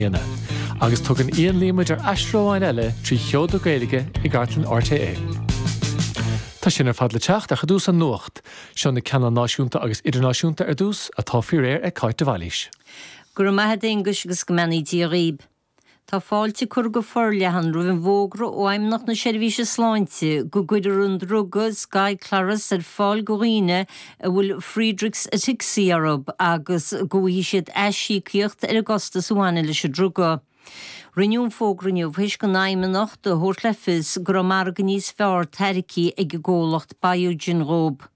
bliana, agus tugann Ian Lee muid ar aistear amháin eile trí sheoda Gaeilge i gcartlann RTÉ. Tá sin ar fad le teacht ach i dtús an nuacht, seo na ceanna náisiúnta agus idirnáisiúnta ar dtús, atá faoi réir ag Cáit de Bhailís. Go raibh maith a'd a Aonghuis agus go mbeannaí Dia dhaoib. Tá fáilte curtha go forleathan roimh an bhfógra ó Fheidhmeannacht na Seirbhíse Sláinte go gcuirfear an druga Skyclarys ar fáil do dhaoine a bhfuil Friedreich's Ataxia orthu agus go bhfaighidh siad aisíocaíocht ar an gcostas a bhaineann leis an druga. Rinneadh an fógra inniu tar éis don Fheidhmeannacht a thabhairt le fios go raibh margadh níos fearr tairgthe ag an gcomhlacht Biogen dhóibh.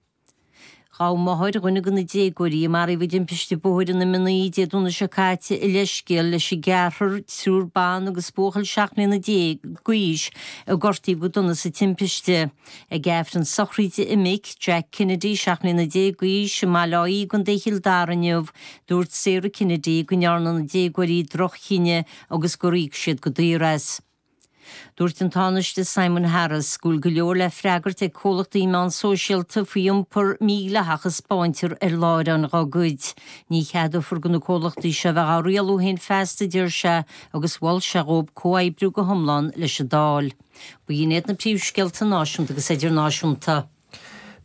Ghabh máthair dhuine de na déagóirí a maraíodh i dtimpiste bóthair ar an M naoi Dé Domhnaigh seo caite a leithscéal leis an gceathrar, triúr ban agus buachaill seacht mbliana déag d'aois, a gortaíodh go dona sa timpiste. Ag aifreann sochraide a mic, Jack Kennedy, seacht mbliana déag d'aois, i mBaile Átha Í i gContae Chill Dara inniu, dúirt Sarah Kennedy go ndearna na déagóirí droch-chinneadh agus gur íoc siad go daor as. Dúirt an Tánaiste Simon Harris go bhfuil go leor le freagairt ag comhlachtaí meán sóisialta faoi iompar mídhleathach a spáintear ar láithreáin dá gcuid. Ní cheadófar do na comhlachtaí seo a bheith á rialú féin feasta, a deir sé, agus mhol sé dhóibh comhoibriú go hiomlán leis an Dáil. Ba shin iad na príomhscéalta náisiúnta agus idirnáisiúnta.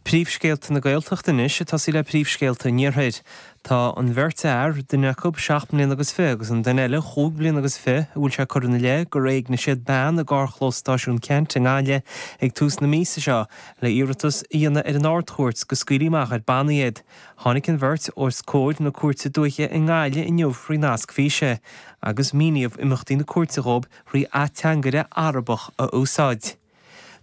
Príomhscéalta na Gaeltachta anois, ag tosaí le príomhscéalta an Iarthair. Tá an bheirt fhear, duine acu seacht mbliana agus fiche agus an duine eile chúig bliana agus fiche, a bhfuil sé curtha ina leith gur éignigh siad bean i gcarrchlós Stáisiún Ceannt i nGaillimh ag tús na míosa seo le iarratas a dhéanamh ar an Ard-Chúirt go scaoilfí amach ar bannaí iad. Tháinig an bheirt os comhair na cúirte dúiche i nGaillimh inniu faoi nasc físe agus míníodh imeachtaí na cúirte dhóibh rí ateangaire Arabach a úsáid.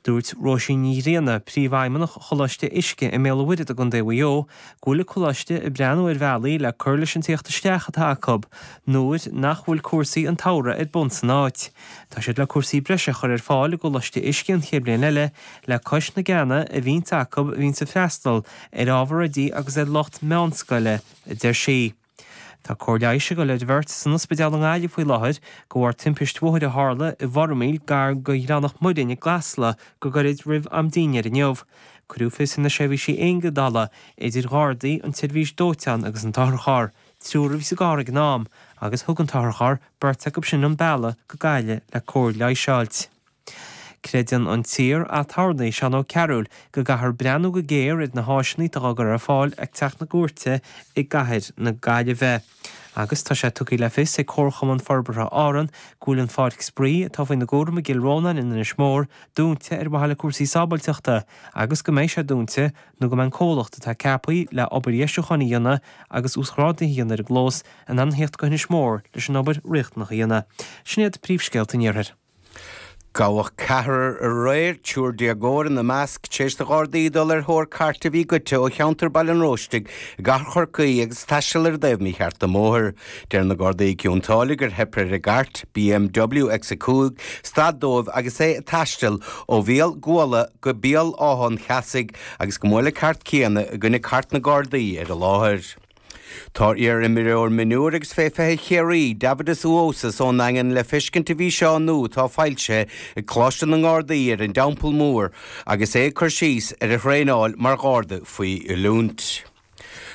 Dúirt Róisín Ní Ghrianna, Príomhfheidhmeannach Choláiste Uisce i mBéal an Mhuirthead i gContae Mhaigh Eo, go bhfuil an Coláiste ag breathnú ar bhealaí le cur leis an teacht isteach atá acu nuair nach bhfuil cúrsaí an tsamhraidh ar bun san áit. Tá siad le cúrsaí breise a chur ar fáil i gColáiste Uisce an chéad bhliain eile le cois na gceanna a bhíonns acu a bhíonns ag freastal ar ábhar oidí agus ar lucht meánscoile, a deir sí. Tá cóir leighis ag dul ar bheirt san ospidéal i nGaillimh faoi láthair de bharr timpist bhóthair a tharla i bhFormaoil gar do Ghleann Mhac Muirinn i gCasla go gairid roimh am dinnéir inniu. Cuireadh fios ar na seirbhísí éigeandála, idir Ghardaí, an tSeirbhís Dóiteáin agus an t-otharcharr, triúr a bhí sa gcarr ag an am, agus thug an t-otharcharr beirt acu sin chun bealaigh go Gaillimh le cóir leighis a fháilt. Creideann an t-iar-aturnae Seán Ó Cearúil go gcaithfear breathnú go géar ar na háiseanna atá á gcur ar fáil ag Teach na gCúirte i gcathair na Gaillimhe agus tá sé tugtha le fios ag Comharchumann Forbartha Árann go bhfuil an Pháirc Spraoi atá faoina gcúram i gCill Rónáin in Inis Mór dúnta ar mhaithe le cúrsaí sábháilteachta agus go mbeidh sé dúnta nó go mbeidh an comhlacht atá ceaptha le obair dheisiúcháin a dhéanamh agus uasghráduithe a dhéanamh ar an gclós in ann a theacht go hInis Mór leis an obair riachtanach a dhéanamh. Sin iad príomhscéalta an iarthair. Gabhadh ceathrar aréir, triúr déagóir ina measc, tar éis do Ghardaí dul ar thóir cairt a bhí goidte ó cheantar Bhaile an Róistigh i gcathair Chorcaí agus taisteal ar an dtaobh mícheart den mbóthar. Deir na Gardaí i gCionn tSáile gur theip ar an gcairt, BMW X5, stad dóibh agus é ag taisteal ó Bhéal Guala go Béal Átha an Cheasaigh agus gur bhuail an chairt chéanna i gcoinne cairt na nGardaí ar an láthair. Tá iar-imreoir mionúir agus fé 20 Chiarraí, Deividas Uosis ón Daingean le feiscint i bhfíseán nua atá foilsithe ag Coláiste na nGardaí ar an dTeampall Mór agus é ag cur síos ar a thraenáil mar Gharda faoi oiliúint.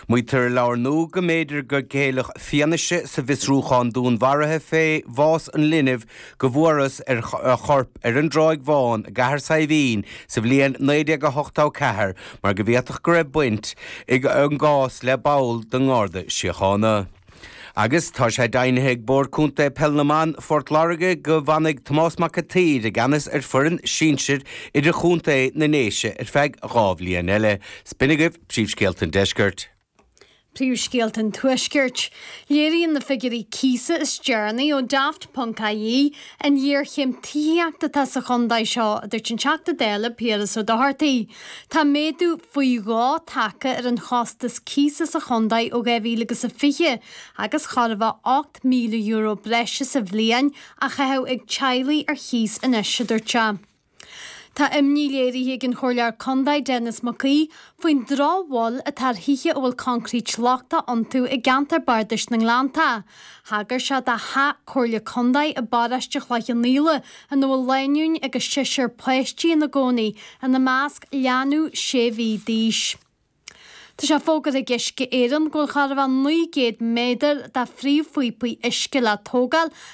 Maítear i leabhar nua go mb'fhéidir gur ceileadh fianaise sa bhfiosrúchán dúnmharaithe fé bhás an linbh go bhfuarthas a chorp ar an dTráigh Bhán i gCathair Saidhbhín sa bhliain 1984 mar go bhféadfadh go raibh baint ag an gcás le ball den nGarda Síochána. Agus tá sé deimhnithe ag Bord Contae Peil na mBan Phort Láirge go bhfanfaidh Tomás Mac an tSaoir i gceannas ar foireann sinsir idir-chontae na nDéise ar feadh dhá bhliain eile. Is b'in agaibh Príomhscéalta an Deiscirt. Príomhscéalta an Tuaiscirt. Léiríonn na figiúirí cíosa is deireanaí ó Daft.ie an ghéarchéim tithíochta atá sa chontae seo, a dúirt an Teachta Dála Piaras Ó Dochartaigh. Tá méadú faoi dhó tagtha ar an chostas cíosa sa chontae ó 2020 agus chóir a bheith €8,000 breise sa bhliain á chaitheamh ag teaghlaigh ar chíos anois, a dúirt sé. Tá imní léirithe ag an Chomhairleoir Contae Denis Mac Aoidh faoin drochbhail atá ar thithe a bhfuil concrete lochtach iontu i gceantar Bardais na nGleanntach. Thagair sé do Theach Comhairle Contae i bParáiste Chloich Cheann Fhaola ina bhfuil lánúin agus seisear páistí ina gcónaí, ina measc leanbh sé mhí d'aois. Tá sé fógartha ag Uisce Éireann go bhfuil chóir a bheith 900 méadar de phríomhphíopaí uisce le tógáil